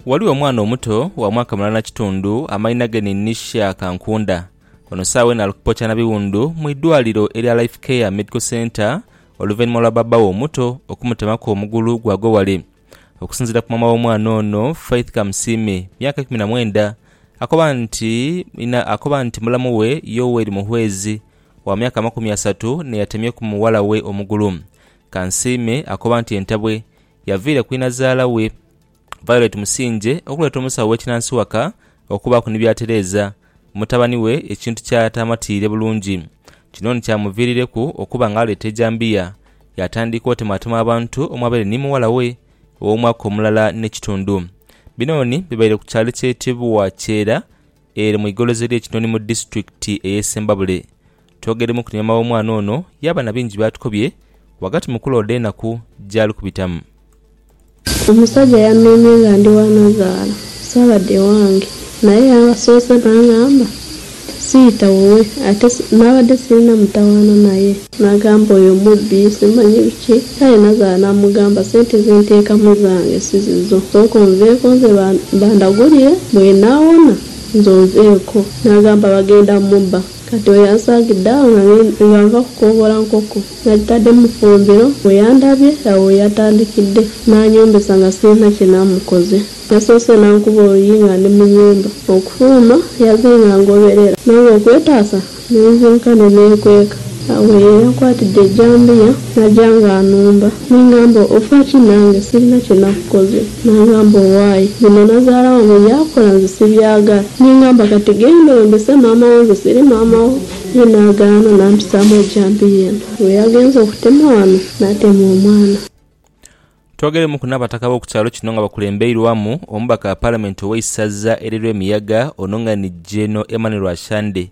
Ghaligho omwana omuto wa mwaka mulala na kitundu amainha ge ni Nisha Kankunda. Ono saagha eno ali kupookya na biwundu mu idwaliro erya Life Care Medical Centre oluvainhuma lwa baba we omuto okumutemaku omugulu gwagwa wale. Okusinzira ku maama w'omwana ono Faith Kamusiime myaka ikumi na mwenda akoba nti inha akoba nti mulamu we Yoweri Muhwezi wa myaka amakumi asatu n'eyatemyeku mughala we omugulu. Kansiime akoba nti entabwe Yaviire ku inazaala we, Violet Musingye okuleeta omusawo w'ekinansi waka okubaaku ni by'atereeza mutabani we ekintu ky'ataamatiire bulungi. Kino ni kyamuviirireku okuba ng'aleeta ejambiya yaatandika otemaatema abantu omwabaire ni mughala we ow'omwaka omulala n'ekitundu. Binooni bibaire ku kyalo ekyetebwa Kyera ere mu igolozi ly'e Kinoni mu disitulikiti ey'e Sembabule Twogeiremu ku nyaama w'omwana ono yaaba na bingi by'atukobye ghagati mu kulooda enaku gy'ali kubitamu. Omusaja yameemye nga ndi wa nazaala, saabadha ewange. Naye yansoose n'angamba siita wuwe ate naabadde sirina mutawaana naye. Naagamba oyo mubbi, simanyi biki. Aye nazaala naamugamba sente ze nteekamu zange si zizo, sooka onveeko nze bandagulire bwenaawona nze onveeko. Naagamba bagenda mubba. Kati oyo ansaagidde agho nga nva kukooghola nkoko, nadhitadde mu fumbiro, bwe yandhabye agho we yatandikidde n'anyombesa nga sirina kye naamukoze. Yasoose n'ankuba oluyi nga ndi mu nyumba. Okufuluma yaze nga angoberera, nange okwetaasa ne nzinka ne neekweka. Agho ye yankwatidde ejjambiya n'aja nga anumba. Ni ngamba, Ofa ki nange? Sirina kye nakukoze. N'angamba, Owaye, bino nazaala wange bye yakola nze sibyagala. Ni ngamba, Kati genda oyembese maama wo, nze siri maama wo. Ye n'agaana, n'ampisaamu ejampi ye eno. Bwe yagenze okutema wano, n'atema omwana. Twogeremuku n'abataka b'oku kyalo kino nga bakulembeirwamu omubaka wa Palamenti ow'eisaza erirw'emiyaga ono nga ni Gen. Emmanuel Ashande.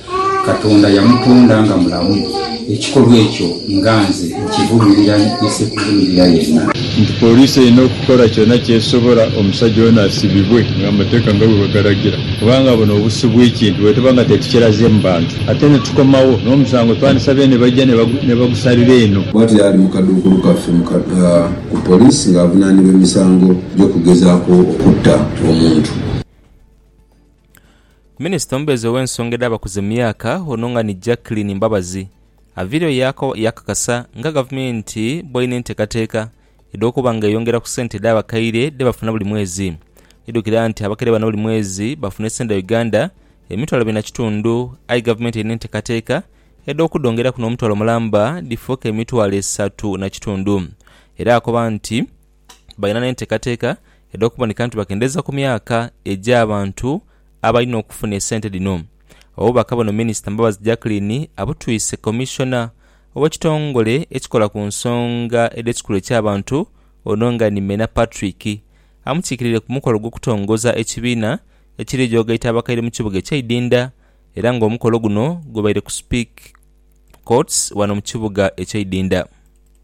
Katonda yamutonda nga mulamu, ekikolwa ekyo nga nze nkivumirira nise kuvumirira yenna. Nti Poliisi erina okukola kyona kyesobola omusajja ono asibibwe nga amateeka nga bwebagalagira kubanga buno obusi bwekintu bwetuba nga tetukiraze mu bantu ate netukomawo nomusango twandisabye nebajja nebagusalira eno. Bwatyo yali mu kaduukulu kaffe ku Poliisi nga avunanibwa emisango gyokugezako okutta omuntu. Minisita omubeezi ow'ensonga edh'abakuze mu myaka ono nga ni Jacqueline Mbabazi aviireyo yaakakasa nga Gavumenti bw'erina enteekateeka edh'okuba nga eyongera ku sente edh'abakaire dhe bafuna buli mwezi. Idhukira nti abakaire bano buli mwezi bafuna esente dha Uganda emitwalo ebiri na kitundu aye Gavumenti erina enteekateeka edh'okudhongeraku n'omutwalo mulamba dhifuuke emitwalo esatu na kitundu era akoba nti, balina n'enteekateeka edh'okuboneka nti bakendeeza ku myaka egy'abantu abalina okufuna esente dhino. Obubaka buno Minisita Mbabazi Jacqueline abutwise Commissioner ow'ekitongole ekikola ku nsonga edh'ekikula eky'abantu ono nga ni Mena Patrick amukiikirire ku mukolo gw'okutongoza ekibiina ekiri jogaita abakaire mu kibuga ekye Idinda era nga omukolo guno gubaire ku Speke Courts wano mu kibuga ekye Idinda.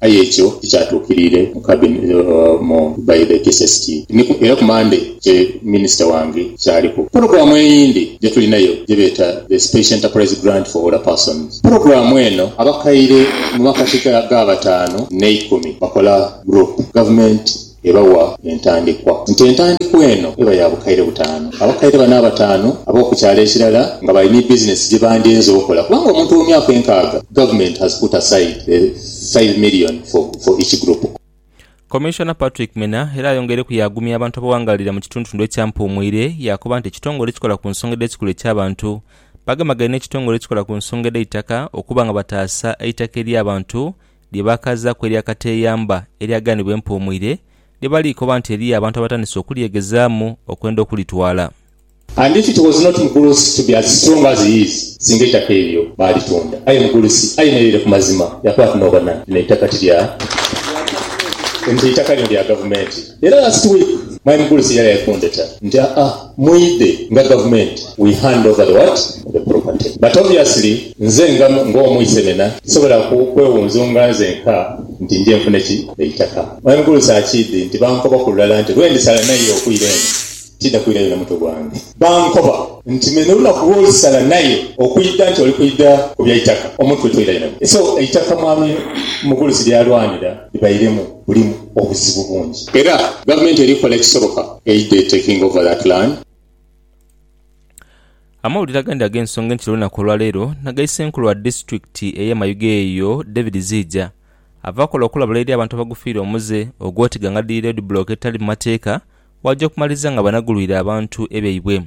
Aye ekyo tikyatuukiriire mu cabin mu by the KSST, ni ku era ku Monday kye minisita wange ky'aliku. Pulogulaamu eyindi gye tulinayo gye beeta the Special Enterprise Grant for Older Persons. Pulogulaamu eno abakaire mu makati ga ga bataanu n'eikumi bakola group. Gavumenti Ebawa entandikwa nti entandikwa eno eba ya bukaire butaanu. Abakaire bano abataanu ab'oku kyalo ekirala nga bali ni bizinesi gye bandinze okola kubanga omuntu omu myaka enkaaga. Government has put aside the five million for for each group. Commissioner Patrick Mena era ayongeireku yaagumya abantu abawangaalira mu kitundtundu ekya Mpuumwire yaakoba nti ekitongole ekikola ku nsonga edh'ekikula eky'abantu bagemagaine n'ekitongole ekikola ku nsonga edh'eitaka okuba nga bataasa eitaka ery'abantu lye baakaazaaku erya kateeyamba eryagaanibwa empuumwire, lye bali koba nti eriyo abantu abatandise okulyegezaamu okwenda okulitwala. And if it was not Mugulusi to be as strong as he is, singa eitaka eryo baalitunda. Aye Mugulusi ayemereire ku mazima, yakoba ati, N'obona, lino eitaka ti lya nte, eitaka lino lya gavumenti. Era last week, my Mugulusi yali aidhi kundheta nti, Aa, Mwidhe nga gavumenti we hand over the what? The property but obviously nze nga nga omu isenena sisobola ku kwewunzunga nzenka nti nje nfune ki? Eitaka. Mwami Gulusa akidhi nti bankoba ku lulala nti lwendisala naye okwira eno tidha kwirayo na mutwe gwange. Bankoba nti me nolunaku lwolisala naye okwidha nti oli kwidha ku bya itaka omutwe toirayo na mutwe so eitaka mwami Mugulusi lyalwanira libairemu bulimu obuzibu bungi. Era gavumenti eri kola ekisoboka Amawulire agandi ag'ensonga enkya olunnaku olwaleero naga Senkulu wa disitulikiti eye Mayuge eyo David Ziija ava akola okulabula eri abantu abagufiire omuze ogwoti gangadhiri loodi bulooka etali mumateeka waja okumaliriza nga banagulwire abantu ebyaibwe.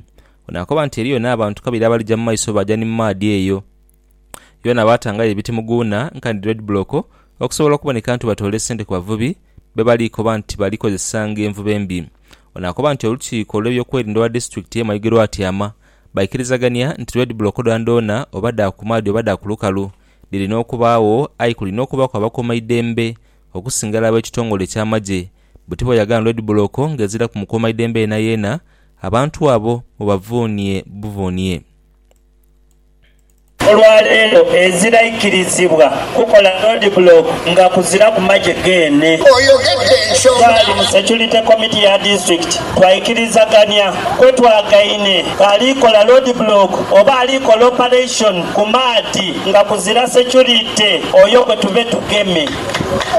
Ono akoba nti eriyo n'abantu kabiri abalija mumaiso baja ni mumaadhi eyo. Yona baatangayo ebiti mu guuna nkani red block okusobola okuboneka nti batoole sente ku bavubi be bali koba nti bali kozesa ng'envuba embi. Ono akoba nti olukiiko olw'ebyokwerinda olwa disitulikiti ye Mayuge lwatyama baikirizagania nti red block dhoonadhoona oba dha ku maadhi oba dha ku lukalu dhirina okubaagho aye kulina okubaaku abakuumaidembe okusinga ela ab'ekitongole eky'amagye bwe tiboyagano red block ng'eziraku mukuumaidembe yenayeena abantu abo mubavuunie buvuunie. Olwaleero ezira ikirizibwa kukola road block nga kuziraku magye geene. Twali mu security committee ya district twaikirizagania kwetwagaine ali kola road block oba ali kola operation ku maadhi nga kuzira security oyo gwetube tugeme.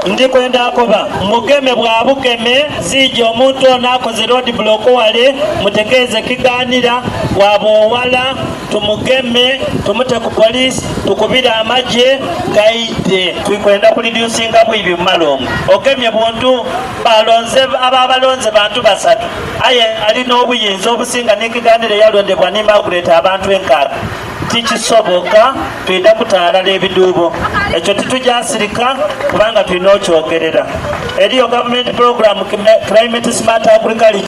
Ndi kwenda koba mugeme bwa bugeme ziije omuntu ono akoze road block wale mutegeeze kiganira waba owala. Tumugeme, tumute ku police, tukubire amagye gaidhe. Tuli kwenda ku reducinga bwibi mu malungu. Ogemye buntu, balonze aba balonze bantu basatu aye ali n'obuyinza obusinga ni Kigandhira eyalondebwa ni Margaret abantu enkaaga. Tikisoboka, twidha kuta ghalala ebidhuubo. Ekyo titugya sirika kubanga tulina okyogerera. Eriyo gavumenti pulogulamu Climate Smart Agriculture.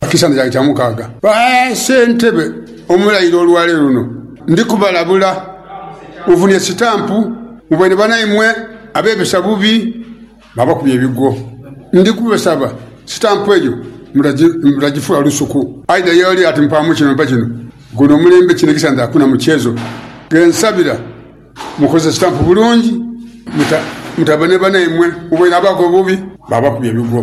Ekisanja kyange kya mukaaga. Ba Ssentebe omulaire olwaleero luno ndi kubalabula muvunhe sitampu mu baine banaimwe abeebesa bubi mwabakubya ebigwo. Ndi kubasaba sitampu eyo mutagifuula lusuku aidha ye oli ati mpaamu kino mpa kino. Guno omulembe kino ekisanja hakuna mukyezo. Ghe nsabira mukozese sitampu bulungi mutabe ni banaimwe mu baine abakola obubi mwabakubya ebigwo.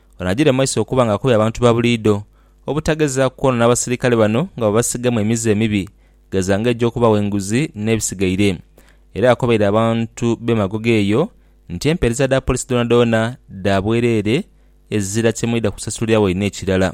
Onagire maiso okuba nga akobya abantu ba buliidho obutagezaaku kwonoona basirikale bano nga babasigamu emize emibi gheza nga egy'okubawa enguzi n'ebisigaire. Era akobaire abantu b'e Magogo eyo nti empeereza dha poliisi dhoonadhoona dha bwereere ezira kye mwidha kusasulira waine ekirala.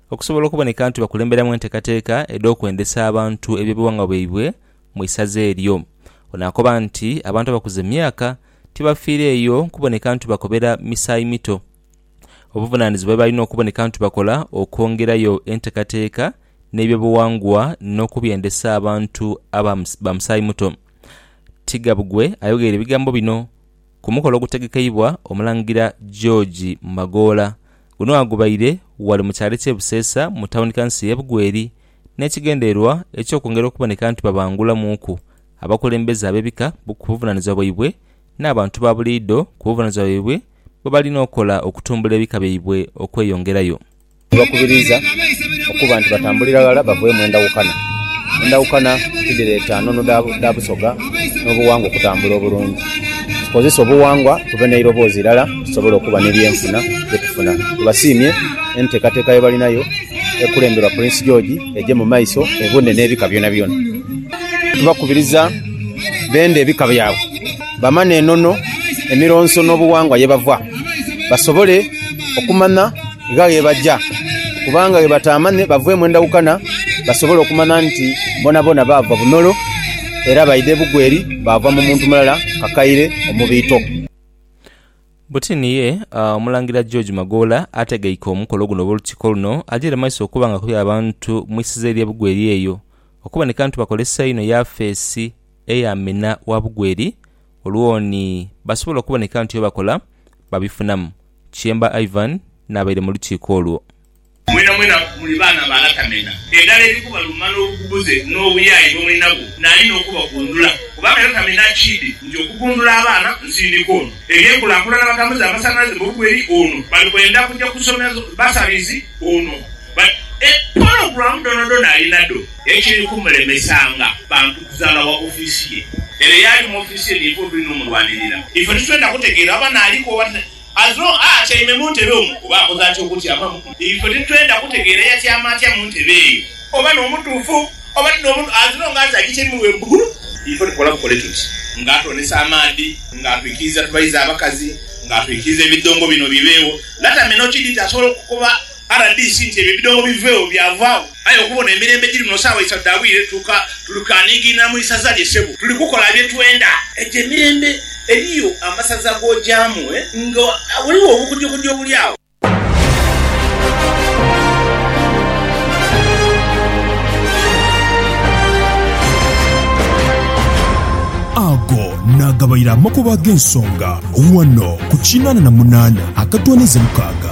Okusobola okuboneka nti bakulemberamu enteekateeka edh'okwendesa abantu eby'obughangwa bwaibwe mu isaza eryo, ono akoba nti abantu abakuze mu myaka tibafiireeyo kuboneka nti bakobera misaayi mito. Obuvunaanizibwa bwe balina okuboneka nti bakola okwongerayo enteekateeka n'eby'obughangwa n'okubyendesa abantu aba ba musaayi muto. Tigabugwe ayogeire ebigambo bino. ku mukolo ogutegekeibwa Omulangira George Magoola. Guno agubaire ghale mu kyalo eky'e Buseesa mu tawuni kanso y'e Bugweri n'ekigendererwa eky'okwongera okuboneka nti babangulamuuku abakulembeze ab'ebika ku buvunaanizibwa bwaibwe n'abantu ba buliidho ku buvunaanizibwa bwaibwe bwebalina okukola okutumbula ebika byaibwe okweyongerayo. Tubakubiriza okuba nti batambulira ghala bavee mu endawukana. Endawukana tidhireeta nnono dha busoga n'obuwangwa okutambula obulungi. Tukozese obuwangwa tube n'eirobozi irala tusobole okuba n'ebyenfuna bye tufuna. Tubasiimye enteekateeka ye balinayo ekulemberwa Prince George egye mu maiso ebune n'ebika byonabyona. Tubakubiriza bende ebika byabwe bamane enono, emironso n'obuwangwa ye bava basobole okumanya. Gha ghebaja kubanga ghebataamane bavwemu endawukana basobole okumana nti bonabona baava bunolo era baidha ebugwe eri baava mu muntu mulala kakaire omubiito. Butini ye Omulangira George Magoola ategeike omukolo guno oba olukiiko luno ajeire maiso okuba nga akubye abantu mu isiza erye Bugweri eyo okuboneka nti bakolesa einho yafeesi eya Amina wa Bugweri olwo ni basobola okuboneka nti byebakola babifunamu. Kyemba Ivan n'abaire mu lukiiko olwo. Mwenamwena muli baana ba lata mena. Endala eri kubaluma n'obugubuze n'obuyaaye bwe muli nabwo naali n'okubagundula, kubanga lata mena akiidhi nti okugundula abaana nsindika ono. Eby'enkulakulana batambuze amasanhalaze mu bugweri ono, bali kwenda kuja ku somero basabizi ono. But e pologram dhonadhona alina dho. Ekiri kumulemesanga bantu kuzaala wa office ye. Ere yaali mu office ye niife otulina omulwanirira. Ife titwenda kutegeera oba naaliku oba ta as long a atyaime mu ntebe omwo oba akoze atya okutyamamu. Ife titwenda kutegeera yatyama atya mu ntebe eyo oba n'omutuufu oba ti n'omutuufu as long as agityaimu we bugulu. Ife tukola bukole tuti nga atwonesa amaadhi, nga atwikiriza tubayize abakazi, nga atwikiriza ebidhongo bino bibeegho. Latamina okidhi nti asobola okukoba Rdc nti ebyo ebidhoobo biveewo byavaagho aye okubona emirembe egiri muno saawa isatu dha bwire tuka tuli kanigiina mu isaza lye sebo tuli kukola bye twenda. Egyo emirembe eriyo amasaza g'ogyamu nga ghaligho obukujukujju obuli agho. Ago naagabaire amakubo ag'ensonga ghano ku kinaana na munaana akatoonaiza mukaaga.